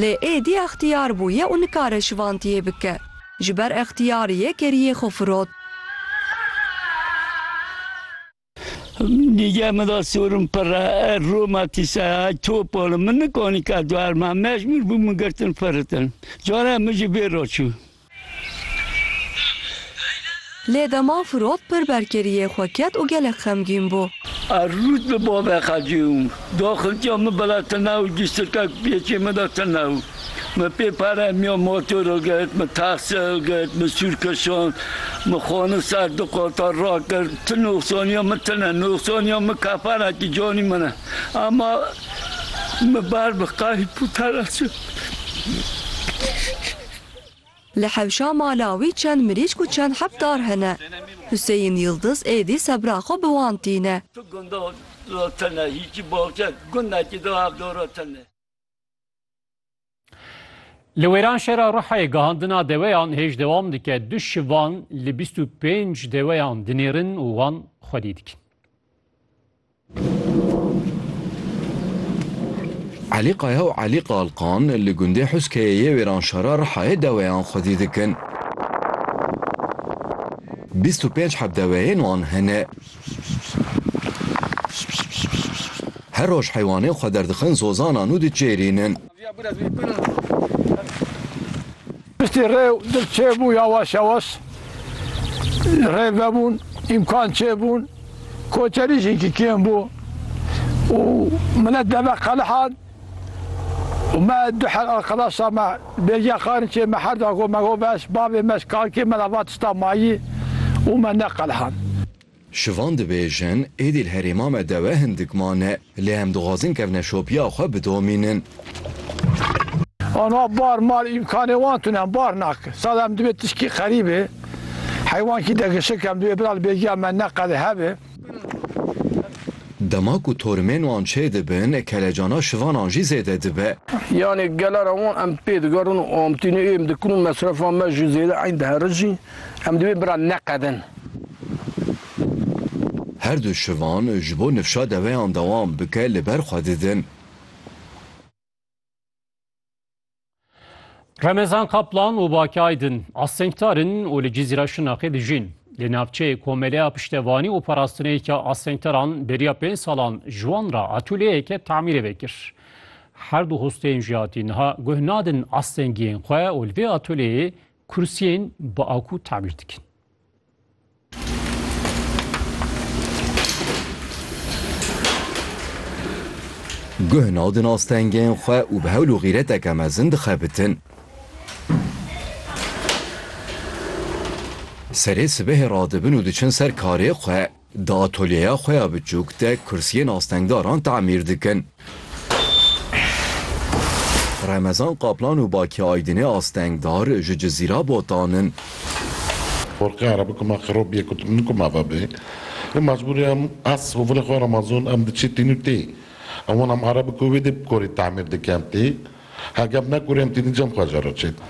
Lê êdî extiyar bûye û nikare şivantiyê bike. Ji ber extiyariyê keriyê xwe firot. Nîge min da sorum pere er Roma tîse ay topol. Min nikonî ka duerma. Mecbûr bûm min girtin firitin. Carek min ji bê re çû. Lê dema Firot pir berkeriyê xwe ket û gelek xemgîn bû. Ez rût bi bavê xwe ciyûm. Do xiltiya min bila tune û giştikek pêçê min de tune bû. Min pê peremiya motoro girt, min taxi girt, min sûr kişand, min xwarin ser du qata rakir. Ti noxsaniya min tune, noxsaniya min kefanekî canî min e. Ema min ber bi qehî pûtereşê. Li hewşa mala wî çend mirîşk û çend heb dar hene. Huseyîn Yildiz êdî sebra xwe bi wan tîne. Tu gunda da tune, hîçî baxçe gundekî da hev dara tune. Li wêran şera Ruhayê gihandina deweyan hêj dewam dike. Du şivan li bîst û pênc deweyan dinêrin û wan xwedî dikin. Elî Kaya û Elî Kalkan li gundê Huskeyê yê Wêranşara Rihayê deweyan xwedî dikin. Bîst û pênc heb deweyên wan hene. Her roj heywanên xwe derdixin zozanan û diçêrînin. Piştî rê û dil çêbû yawaş yawaş rê vebûn, îmkan çêbûn, koçerî jî ki kêm bû û milet deve qelihan û me du her arqedaşa me bêgiya Xarinçê me her da got me got veş bavê me ji kakê me re va tişta mayî û me neqelihan. Şivan dibêjin, Êdî li herêma me dewe hindik mane, lê em dixwazin kevne şopiya xwe bidomînin. Aniha bar mal îmkanê wan tune, bar nake. Sala em divê tişkî qerîbê, heywankî de gişik, em divê bira li bêgiya me neqede hebe. Dema ku torimên wan çêdibin, kelecana şivanan jî zêde dibe. Yanê gelera wan em pê digerin û amtînê êm dikin û mesrefa me jî zêde eyn diherijîn. Em divê bira neqedin. Her du şivan ji bo nifşa deveyan dewam bike li ber xwe didin. Remezan Kaplan û Baki Aydin astengdar in û li Cizîra Şirnexê dijîn. Li navçeyê komeleya piştevanî û parastineyeke astengdaran beriya pênc salan ji wan re atûlyeyeke tamîrê vekir. Her du hosteyên jiyatî niha guh nadin astengiyên xwe û li vê atûlyeyê Kursiyên bi aku tamîr dikin. Guh nav din astengên xwe û bi hewl û xîreteke mezin dixebitin. Serê sibehê radibin û diçin ser karê xwe. Di atolyeya xwe ya biçûk de kursiyên astengdaran tamîr dikin. Remezan Kaplan û Baki Aydinê astengdar ji Cizîra botan in. Forqê Erebî ku me xirop bîye ku tu min ku mava bê. Lê mecbûrî em ez û vilê xwe Remezan em diçî tînû tê. Em wan em Erebî ku wê dê bi korî tamîr dikin tê. Hegeb me kurên tînî cem xwe jero çêdin.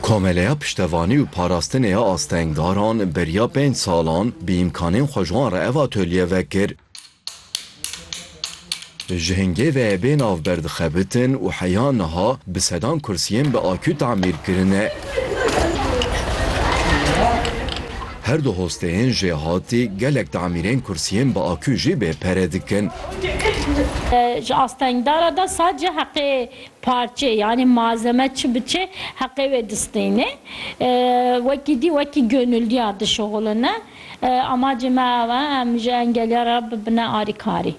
Komeleya Piştevanî û Parastinê ya Astengdaran beriya pênc salan bi îmkanên xwe ji wan re ev atolye vekir. Ji hingê ve bê navber dixebitin û heya niha bi sedan kursiyên bi akû tamîr kirine. Her du hosteyên jêhatî gelek tamîrên kursiyên bi akû jî bê pere dikin. Ji astengdara de sadece heqê parçe yanî malzeme çi bi çi heqê wê distînê. Wekî dî wekî gönüldiyar dişuxulîne. Amacê me ew e em ji engeliyar re bibine arîkarî.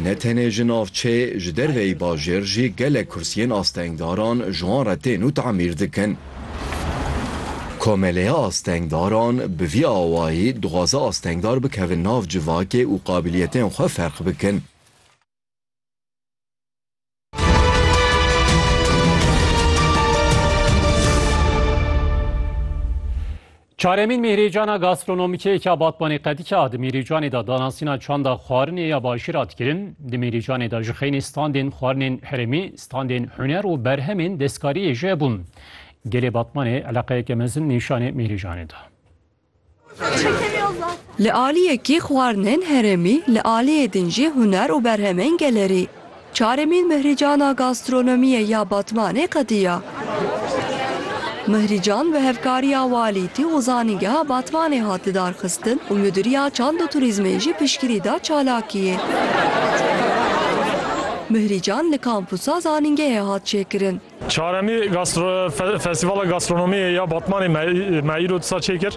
Ne tenê ji navçeyê, ji derveyî bajêr jî gelek kursiyên astengdaran ji wan re tên û tamîr dikin. Komeleya Astengdaran bi vî awayî dixwaze astengdar bikevin nav civakê û qabiliyetên xwe ferq bikin. Çaremîn mîhrîcana gastronomîkê ke Batmanê Qedîke a di mîhrîcanê de danasîna çanda xwarinê ya bajîr a dikirin. Di mîhrîcanê de ji xeynî standên xwarinên herêmî, standên huner û berhemên destkariyê jî hebûn. Gelê Batmanê eleqeyeke mezin nîşanê mîhrîcanê da. Li aliyekî xwarinên herêmî, li aliyê din jî huner û berhemên gelerî. Çaremîn Mihrîcana Gastronomiyê ya Batmanê qediya. Mihrîcan bi hevkariya Walîtî û Zanîngeha Batmanê hat lidarxistin û Mudîriya Çand û Turîzmê jî piştgirî da çalakiyê. Mihrîcan li Kampusa Zanîngehê hat çêkirin. Çaremî Festîvala Gastronomiyê ya Batmanê me îro disa çêkir.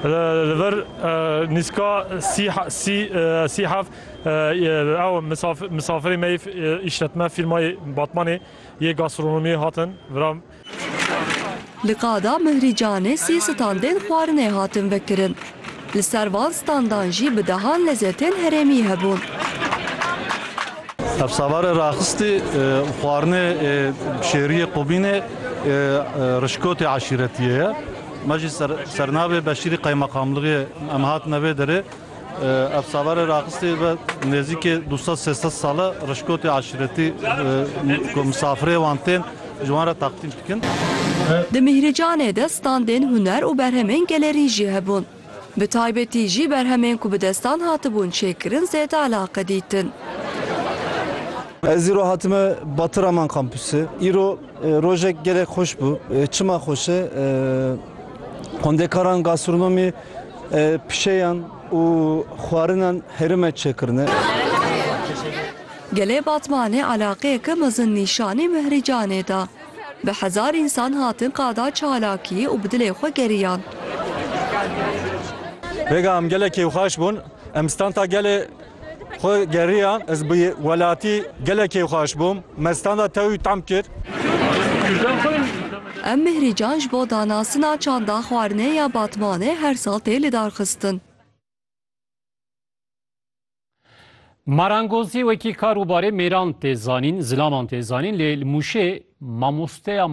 Li vir nîzka sî heft ew misafirê me yê îşletme fîrmayê Batmanê yê gastronomiyê hatin vira. Li Qada Mihrî Canê sê standên xwarinê hatin vekirin. Li ser van standan jî bi dehan lezetên herêmî hebûn. Hevsavarê raxistî û xwarinê şêriyê Qubînê rişkotê eşîretiyê ye. Me jî sernavê Beşîrî Qeymeqamlığiyê em hatine vê derê. Hevsavarê raxistî ve nêzîkê du sed sê sed sal e rişkotê eşîretî ku misafirê wan tên, Ji wan re taqlîd dikin. Di Mîhrîcanê de standên huner û berhemên gelerî jî hebûn. Bi taybetî jî berhemên ku bi destan hatibûn çêkirin zêde eleqe dîtin. Ez îro hatime Batı Raman Kampüsê. Îro rojek gelek xweş bû. Çima xweş e? Xwendekaran gastronomî, pişeyan û xwarinan herime çêkirine. Gelê Batmanê eleqeyeke mezin nîşanî Mihrî Canê da. Bi hezar însan hatin qada çalakî û bi dilê xwe geriyan. Rêga em gelek kêfxweş bûn. Em standa gelê xwe geriyan. Ez bi welatî gelek kêfxweş bûm. Me standa tewî tam kir. Em Mihrî Can ji bo danasina Çanda Xwarinê ya Batmanê her sal tê lidarxistin. Marangozî wekî kar û barê mêran tê zanîn, zilaman tê zanîn lê li Mûşê mamosteya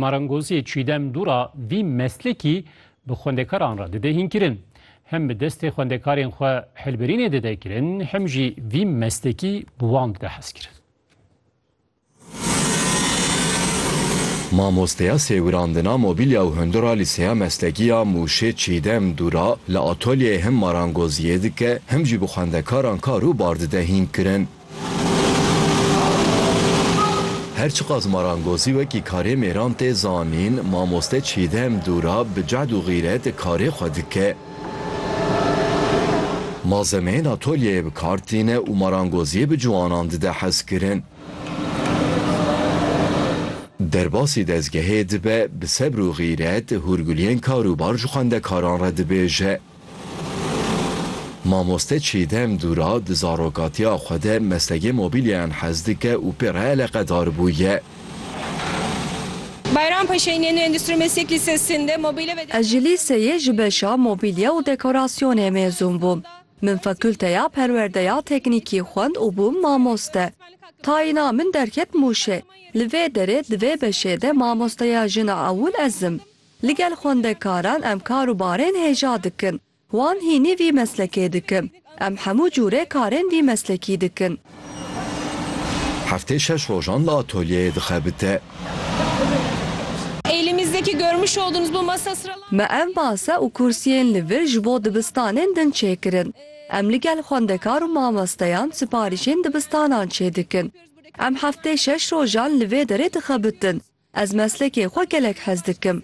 marangoziyê Çîdem Dûra vî meslekî bi xwendekaran re dide hînkirin. Hem bi destê xwendekarên xwe hilbirînê dide kirin hem jî vî meslekî bi wan dide hezkirin. Mamosteya sêwirandina mobîlya û hundir a Lîseya Meslekî ya Mûşê Çîdem Dûra li atolyeyê him marangoziyê dike him jî bi xwendekaran kar û bar dide hînkirin. Her çiqas marangozî wekî karê mêran tê zanîn, mamoste Çîdem Dûra bi cehd û xîret karê xwe dike. Malzemeyên atölyeyê bi kar tîne û marangoziyê bi ciwanan dide hezkirin. Derbasî dezgehê dibe, bi sebr û xîret hûrguliyên karûbar ji xwendekaran re dibêje. Mamoste Çîdem Dûra di zarokatiya xwe de meslekê mobîlyayan hez dike û pê re eleqedar bûye. Bayram Paşay'ın yeni Endüstri Meslek Lisesi'nde mobile ve Ez ji lîseyê ji beşa Mobîlye û Dekorasyonê mêzûn bûm. Min Fakulteya Perwerdeya Teknîkî xwend û bûm mamoste. Tayîna min derket Mûşê. Li vê derê di vê beşê de mamosteya jina ewil ez im. Ligel xwendekaran em kar û barên hêja dikin. Wan hînî vî meslekê dikin. Em hemû cûrê karên vî meslekî dikin. Heftê şeş rojan li atolyeyê dixebite. Me ev masa û kursiyên li vir ji bo dibistanên din çêkirin. Em li gel xwendekar û mamesteyan siparîşên dibistanan çêdikin. Em heftê şeş rojan li vê derê dixebitin. Ez meslekê xwe gelek hez dikim.